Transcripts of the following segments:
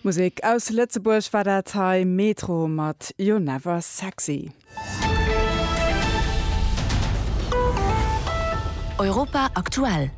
Musek aus Lëtzebuerg war dat hei, Metro mat You're Never Sexy. Europa aktuell.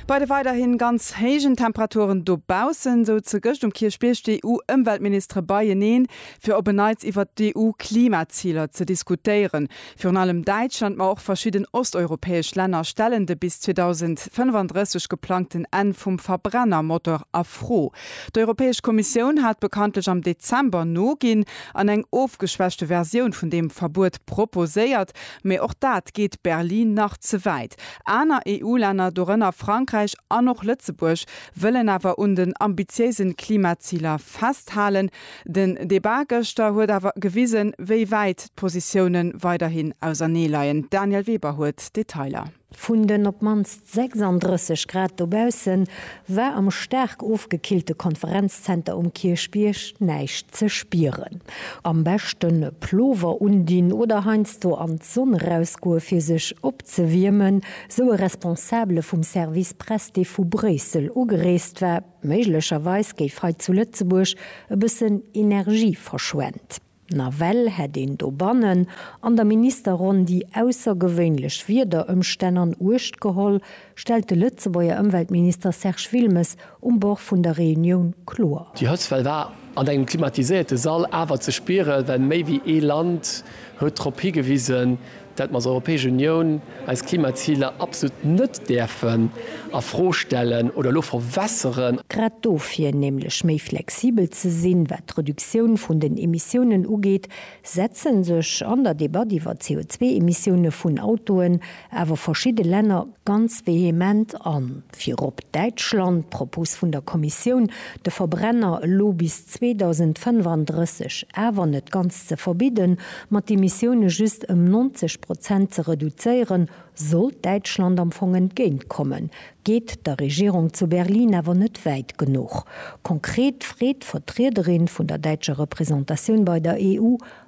Bei de weiderhin ganz héijen Temperaturen dobaussen, souze gëscht um Kierchbierg d'EU-Ëmweltministere beieneen, fir op en Neits iwwert d'EU-Klimaziler ze diskutéieren. Virun allem Däitschland, ma och verschidden osteuropäesch Länner stellen de bis 2035 geplangten Enn vum Verbrennermotor a Fro. D'Europäesch Kommissioun hat bekanntlech am Dezember noginn an eng ofgeschwächte Versioun vun deem Verbuet proposéiert, mee och dat geet Berlin nach ze wäit. Aner EU-Länner, dorënner Frankräich an och Lëtzebuerg, wëllen awer un den ambitiéisen Klimaziler festhalen. Den Debat gëschter huet awer gewisen, wéi wäit d'Positioune weiderhin auserneeleien. D'Danièle Weber huet d'Detailer. Vun den op d'mannst 36 Grad dobausse war am staark ofgekillte Konferenzzenter um Kierchbierg näischt ze spieren. Am beschte Plover undinn oder heiansdo an d'Sonn erausgoe fir sech opzewiermen, sou e Responsabele vum Service Press, dee vu Bréissel ugereest war. Méiglecherweis géif hei zu Lëtzebuerg e bëssen Energie verschwent. Nawell hätt een dobannen an der Ministerronn déi aussergewéinlech Wiederëmstänn an Uecht geholl, stellt de Lëtzebuerger Ëmweltminister Serge Wilmes um Bord vun der Reunioun kloer. Déi Hëtztwell war an engem klimatiséierte Sall awer ze spieren, well méi wéi ee Land huet drop higewisen, datt mer als Europäesch Unioun eis Klimaziler absolut net däerfen a Fro stellen oder elo verwässeren. Grad dofir, nämlech méi flexibel ze sinn, wat d'Reduktioun vun den Emissiounen ugeet, setze sech an der Debatt iwwer d'CO2-Emissioune vun Autoen awer verschidde Länner ganz vehement an. Virop Däitschland, d'Propos vun der Kommissioun, de Verbrenner elo bis 2035, awer net ganz ze verbidden, ma d'Emissioune just ëm 90 Prozent ze reduzéieren, sollt Däitschland am Fong entgéintkommen, geet der Regierung zu Berlin awer net wäit genuch. Konkret freet d'Vertriederin vun der däitscher Representatioun bei der EU,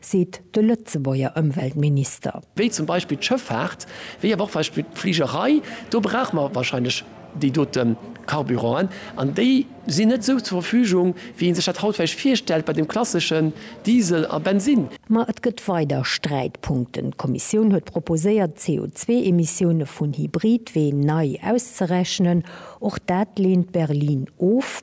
seet de Lëtzebuerger Ëmweltminister. wéi zum Beispill d'Schëffaart, wéi awer och Beispill d'Fligerei, do brauche mer wahrscheinlech déi dote Carburanten, an déi sinn net esou zur Verfügung, wéi ee sech dat haut vläicht virstellt bei dem klasseschen Diesel a Bensinn. Ma et gëtt weider Sträitpunkten. D'Kommissioun huet proposéiert, d'CO2-Emissioune vun Hybridween nei auszerechnen. Och dat leent Berlin of.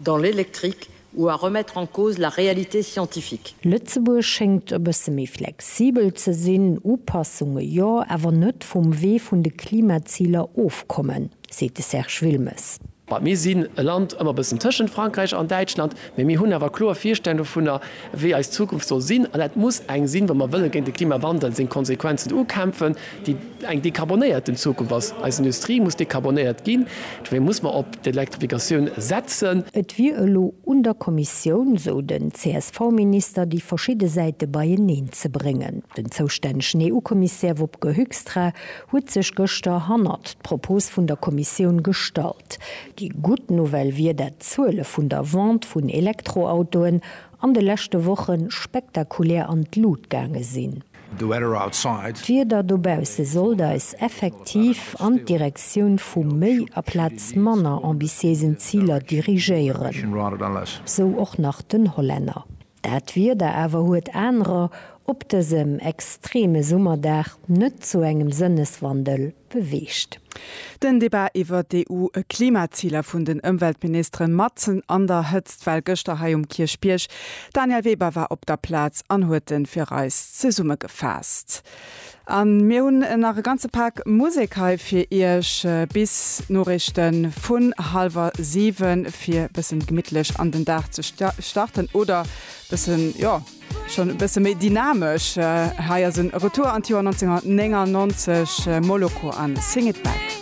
dans l'électrique ou à remettre en cause la réalité scientifique. Lëtzebuerg schéngt e bësse méi flexibel ze sinn, Upassunge jo, awer net vum Wee vun de Klimaziler ofkommen, seet de Serge Wilmes. Well mir sinn e Land ëmmer e bëssen tëschent Frankräich an Däitschland, mä mir hunn awer kloer Virstellungen dovunner, wéi eis Zukunft soll sinn. An dat muss eng sinn, wa mer wëlle géint de Klimawandel seng Konsequenzen ukämpfen, déi eng dekarbonéierten Zukunft ass. Eis Industrie muss dekarbonéiert ginn, dofir muss mer op d'Elektrifikatioun setzen. Et wier elo un der Kommissioun, esou den CSV-Minister, déi verschidde Säite beieneen ze bréngen. Den zoustännegen EU-Kommissär Wopke Hoekstra huet sech gëschter hannert d'Propos vun der Kommissioun gestallt. Déi gutt Nouvelle wier, dat d'Zuele vun der Vente vun Elektroautoen an de leschte Woche spektakulär an d'Lut gaange sinn. The weather outside. D'Wieder dobausse sollt eis effektiv an d'Direktioun vu méi aplaz manner ambitiéisen Ziler dirigéieren, sou och nach den Hollänner. Dat Wieder awer huet anerer op dësem extreme Summerdag net zu engem Sënneswandel beweegt. Den Debat iwwert d'EU-Klimaziler vun den Ëmweltministeren matzen an der Hëtzt well gëschter hei um Kierchbierg. D'Danièle Weber war op der Plaz an huet en fir eis zesummegefaasst. An mir hunn nach e ganze Pak Musek hei fir iech bis d'Noriichten vun hallwer 7 fir bëssen gemittlech an den Dag ze starten oder bëssen jo. Schonn e bësse méi dynamesch, hei ass e Retour an d'Joer 1999, Moloko an Sing It Back.